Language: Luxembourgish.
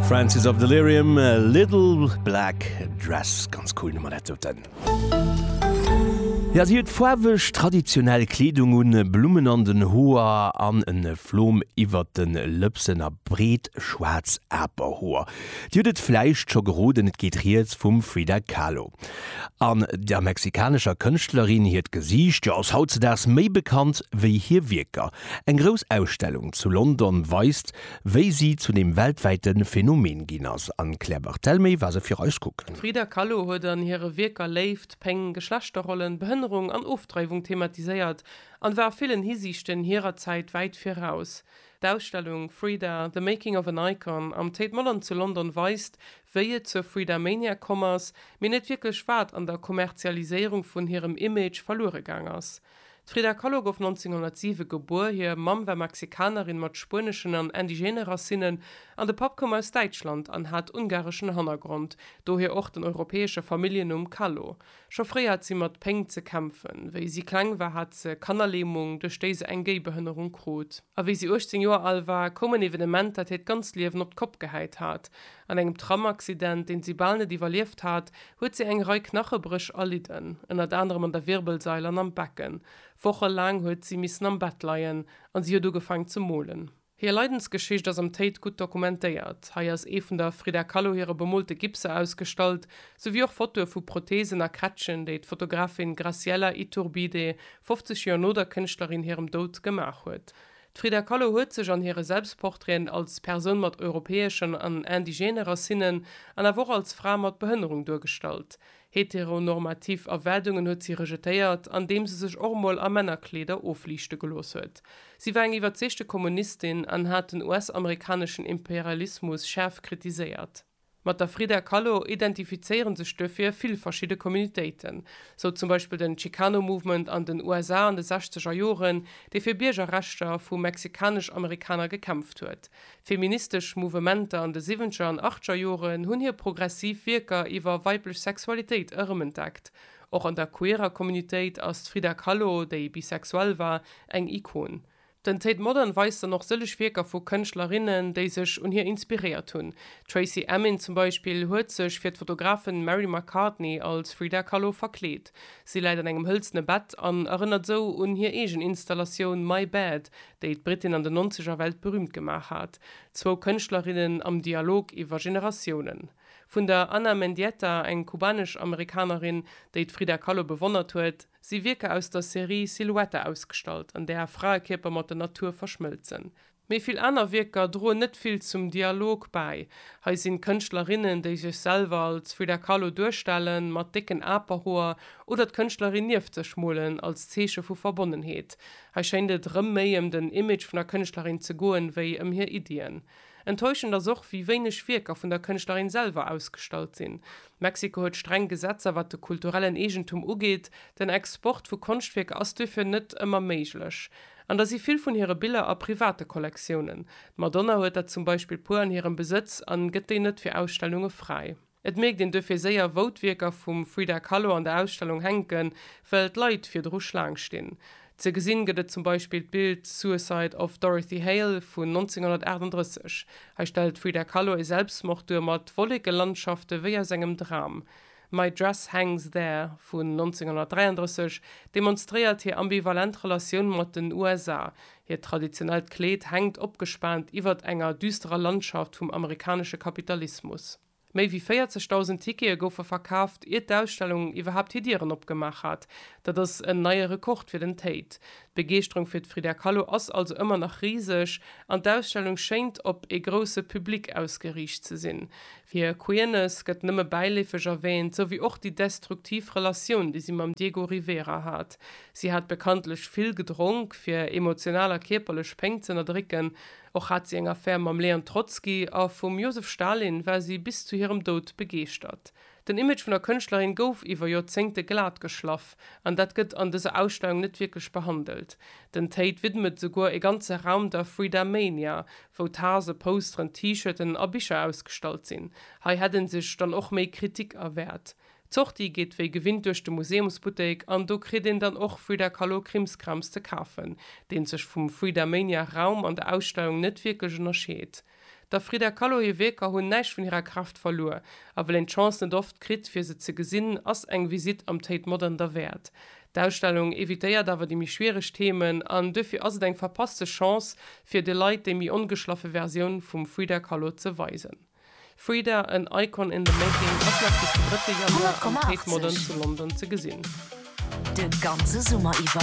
Francis of Delirium, Little Black Dress, ganz cool Nummer dat doten. Ja si huet faarweg traditionell Kleedung un, Blummen an den Hoer an en Flom iwwert den Lëpsen a breet schwaarz Aperhoer. Dir hutt et vläicht scho geroden, et geet riets vum Frida Kahlo. An der mexikanescher Kënschtlerin hiert Gesiicht, jo ass hautzedaags méi bekannt wéi hir Wierker. Eng grouss Ausstellung zu London weist, wéi si zu dem weltwäite Phänomen ginn ass an d'Claire Barthelmé war se fir eis kucken. D'Frida Kahlo huet an hire Wierker Léift, Péng, Geschlechterrollen, Behënnerung an Ofdreiwung thematiséiert an war a villen Hisiichten hirer Zäit wäit viraus. D'Ausstellung Frida, The Making of an Icon am Tate Modern zu London weist, wéi et zur Fridamania komm ass, mee net wierklech wat an der Kommerzialiséierung vun hirem Image verluere gaang ass. D'Frida Kahlo gouf 1907 gebuer. Hir Mamm war Mexikanerin mat spueneschen an indigene Racinnen an de Papp koum aus Däitschland an hat ungareschen Hannergrond, dohier och den europäesche Familljennumm Kahlo. Scho fréi hat si mat Péng ze kämpfen. Wéi si kleng war, hat se Kannerlähmung, duerch déi se eng Géibehënnerung krut. A wéi si 18 Joer al war, koum en Evenement, dat hiert ganzt Liewen op d'Kopp gehäit hat. An engem Tramaccident, deen si bal net iwwerlieft hat, huet si eng Rei Knachebréch erlidden, ënnert anerem an der Wirbelsail an am Becken. Woche laang huet si missen am Bett leien a si huet ugefaang ze molen. Hir Leidensgeschicht ass am Tate gutt dokumentéiert. Hei ass ee vun der Frida Kahlo hire bemolte Gipser ausgestallt, souwéi och Fotoe vu Protheesen a Krätschen, déi d'Fotografin Graciela Iturbide 50 Joer no der Kënschtlerin hirem Doud gemaach huet. D'Frida Kahlo huet sech an hire Selbstportraiten als Persoun mat europäeschen an indigene Racinnen an awer och als Fra mat Behënnerung duergestallt. Heteronormativ Erwaardungen huet si rejetéiert, andeem se sech och emol a Männerkleeder ofliichte gelooss huet. Si war eng iwwerzeegte Kommunistin an hat den US-amerikaneschen Imperialismus schaarf kritiséiert. Mat der Frida Kahlo identifizéiere sech duerfir vill verschidde Communitéiten, sou zum Beispill den Chicano Movement an den USA an de sechzeger Joren, dee fir Biergerrechter vu mexikanesch-Amerikaner gekämpft huet. Feministesch Mouvementer an de siwwenzeger an achtzeger Joren hunn hir progressiv Wierker iwwer weiblech Sexualitéit erëmentdeckt. Och an der queerer Communitéit ass d'Frida Kahlo, déi bisexuell war, eng Ikon. Den Tate Modern weist dann och sëllech Wierker vu Kënschtlerinnen, déi sech un hir inspiréiert hunn. D'Tracey Emin zum Beispill huet sech fir d'Fotografin Mary McCartney als Frida Kahlo verkleet. Si läit an engem hëlzene Bett an erënnert sou un hir eegen Installatioun My Bed, déi d'Britin an den Nonzeger weltberüümt gemaach hat. Zwou Kënschtlerinnen am Dialog iwwer Generatiounen. Vun der Ana Mendieta, eng kubanesch-Amerikanerin, déi d'Frida Kahlo bewonnert huet, si Wierker aus der Serie Silhouette ausgestallt, an där Fraekierper mat der Natur verschmëlzen. Méi vill aner Wierker droen net vill zum Dialog bäi. Hei sinn d'Kënschtlerinnen, déi sech selwer als Frida Kahlo duerstellen, mat décken Aperhoer, oder d'Kënschtlerin nieft sech molen, als Zeeche vu Verbonnenheet. Hei schéint et erëm méi ëm den Image vun der Kënschtlerin ze goen, wéi ëm hir Iddien. Enttäuschend ass och, wéi wéineg Wierker vun der Kënschtlerin selwer ausgestallt sinn. Mexiko huet streng Gesetzer, wat de kulturellen Eegentum ugeet. Den Export vu Konschtwierker ass duerfir net ëmmer méiglech. An da si vill vun hire Biller a private Kollektiounen. D'Madonna huet der zum Beispill puer an hirem Besëtz an gëtt déi net fir Ausstellunge fräi. Et mierkt een duerfir séier wou d'Wierker vum Frida Kahlo an der Ausstellung hänken, well d'Leit virdru Schlaang stinn. Ze gesinn gëtt et zum Beispill d'Bild Suicide of Dorothy Hale vun 1938. Hei stellt d'Frida Kahlo e Selbstmord duer mat Wollekelandschafte wéi aus engem Dram. My Dress Hangs There vun 1933 demonstréiert hir ambivalent Relatioun mat den USA, Hiert traditionellt Kleed hänkt opgespaant iwwert enger düsterer Landschaft vum amerikanesche Kapitalismus. Méi wéi 40.000 Tickete goufe verkaaft, ier d'Ausstellung iwwerhaapt hir Dieren opgemaach hat. Dat ass en neie Rekord fir den Tate. D'Begeeschterung fir d'Frida Kahlo ass also ëmmer nach riseg an d'Ausstellung schéint op ee grousse Public ausgeriicht ze sinn. Hir Queerness gëtt nëmme bäileefeg erwäänt, sou wéi och déi destruktiv Relatioun, déi si mam Diego Rivera hat. Si hat bekanntlech vill gedronk, fir emotional a kierperlech Péng z'ënnerdrécken. Och hat si eng Affär mam Leon Trotzki a vum Josef Stalin war si bis zu hirem Doud begeeschtert. Den Image vun der Kënschtlerin gouf iwwer Joerzéngte glat geschlaff an dat gëtt an dëser Ausstellung net wierklech behandelt. Den Tate widmet souguer e ganze Raum der Frida Mania, wou Tase, Posteren, T-Shirten a Bicher ausgestallt sinn. Hei hätt en sech dann och méi Kritik erwäert. D'Sortie geet wéi gewinnt duerch de Museumsbuttek an do kritt een dann och Frida Kahlo Krimskrams ze kafen, deen sech vum Fridamania Raum an der Ausstellung net wierklech ënnerscheet. Der Frida Kahlo hir Wierker hunn näischt vun hirer Kraaft verluer, a well een d'Chance net oft kritt fir se ze gesinn, ass eng Visitt am Tate Modern derwäert. D'Ausstellung evitéiert awer déi méi schwiereg Themen an duerfir ass et eng verpasste Chance fir de Leit déi méi ongeschlaffe Versioun vum Frida Kahlo ze weisen. Frida, en Icon in the making ass nach bis de 3 Januar am Tate Modern zu London ze gesinn. De ganze Summer iwwer.